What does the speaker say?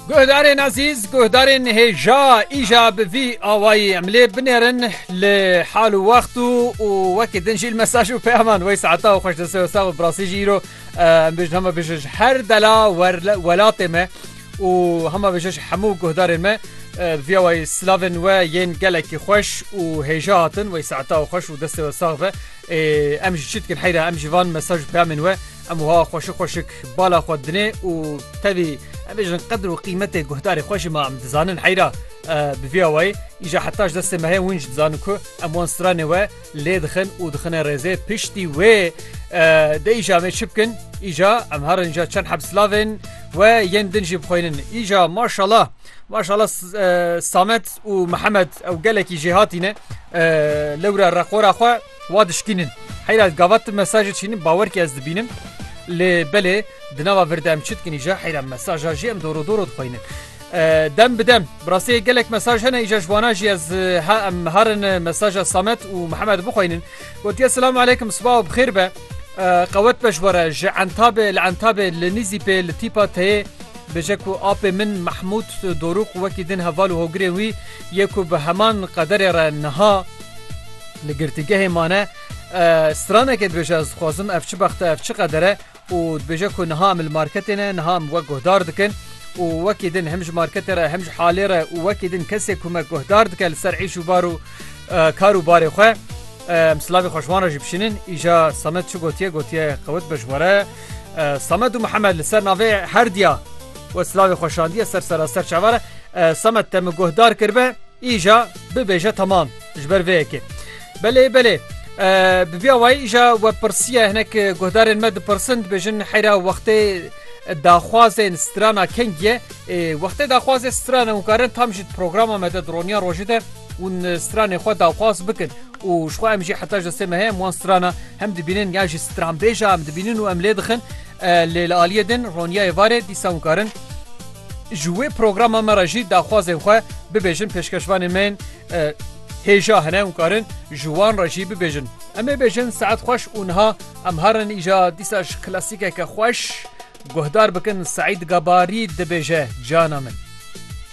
Guhdarên ezîz, guhdarên hêja îja bi vî awayî em lê binêrin li hal û wext û û wekî din jî li mesaj û peyaman wey saeta û xweş dese sax û birasî jî îro em bêjin hema bêje ji her dela welatê me û hema bêje ji hemû guhdarên me vî awayî silavên we yên gelekî xweş û hêja hatin wey saeta û xweş û destê we sax be ê em jî çi dikin heyra em jî van mesaj û peyamên we Em wiha xweşik xweşik bala xwe dinê û tevî em bêjin qedir û qîmetê guhdarê xwe jî ma em dizanin heyra bi vî awayî îja heta ji destê me heye hûn jî dizanin ku em wan stranê we lê dixin û dixine rêzê piştî wê de îja em ê çi bikin îja em herin îja çend heb silav ên we yên din jî bixwînin îja maşala maşala samet û mihemed ew gelekî jêhatîne lewra reqora xwe Wa dişkînin. Heyra gava tu mesajê çînin bawer kî ez dibînim. Lê belê di nava vir de em çi dikin îja heyra mesaja jî em doro doro dixweynin. Dem bi dem bi rastî gelek mesaj hene îja ji wana jî ez ha em harin mesaja Samet û Mihemed bixweynin. Gotiye Silam aleykum siba û bixêr be. Qewet be ji we re ji Entabê li Entabê li Nîzîpê li tîpa teyê bêje ku apê min Mehmûd Dorûq wekî din heval û hogirên wî yê ku bi heman qederê re niha Li girtîgehê mane stranekê dibêje ez dixwazim ev çi bexte ev çi qedere û dibêje ku niha em li marketê ne niha em wek guhdar dikin û wekî din hem ji marketê re hem ji halê re û wekî din kesê ku me guhdar dike li ser êş û bar û kar û barê xwe em silavê xweşwan re jî bişînin îja samet çi gotiye gotiye qewit be ji we re samet û mihemed li ser navê herdiya we silavê xweşandiye ser seraser çavare samet te min guhdar kirbe Îja bibêje temam ji ber vê yekê. Belê belê bi vîya wayî îja we pirsiye hinek guhdarên me dipirsin dibêjin heyra wextê daxwazên strana kengiye ê wextê daxwazê strana hûn karin tam jî programa me de dironiya rojê de hûn stranê xwe daxwaz bikin û ji xwe em jî heta ji destê me heye em wan strana hem dibînin ya jî stranbêja em dibînin û em lê dixin lê li aliyê din roniya êvarê dîsa hûn karin Ji wê programa me re jî daxwazên xwe bibêjin pêşkeşvanên me yên hêja hene û karin ji wan re jî bibêjin. Em ê bêjin saet xweş û niha em herin îja dîsa ji klasîkeke xweş guhdar bikin Seîd Gabarî dibêje Cana min.